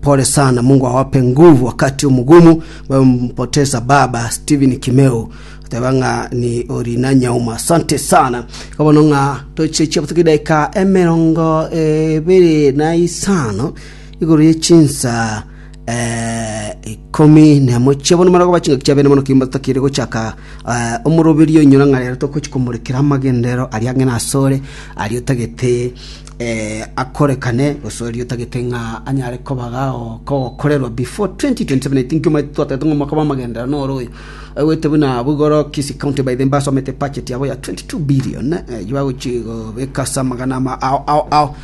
Pole sana mungu awape nguvu wakati omugumu babe mpotesa baba steven kimeu oteba ng'a ni orina nyauma asante sana kabono ng'a toche chiabutuki daika emerongo ebere na isano igoro ye chinsa eh, ikomi nemo chiabono marago bachinga kiabene mono kimba tutakire gochaka eh, omoroberio inyora ng'a rero tokochi komorekera amagendero aria ang'e nasore aria otagete akorekane gose oria otagete ng'a anyare kobaga kogokorerwa before 2027 I think omanyete twatagete ng'a omwaka bw'amagenderero noro oyo aigwete buna abwo igoro Kisii County by the mbasomete budget yabo ya 22 billion eyio bagochia gobeka ase amagana ama ao ao ao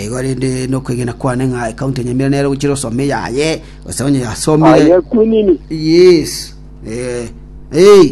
igo rende nokwegena kwane ng'a county ya Nyamira nero egochia gosoma eyaye gose onye yasomire Aya kunini. yes eh eh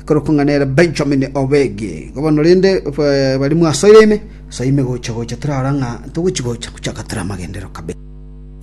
Ekorokwa ng'a nere Benjamin Obegi. Igo bono rende bari mwasoire ime, asoe ime gocha-gocha torara ng'a ntogochi gocha gochaka tore amagenderero kabere.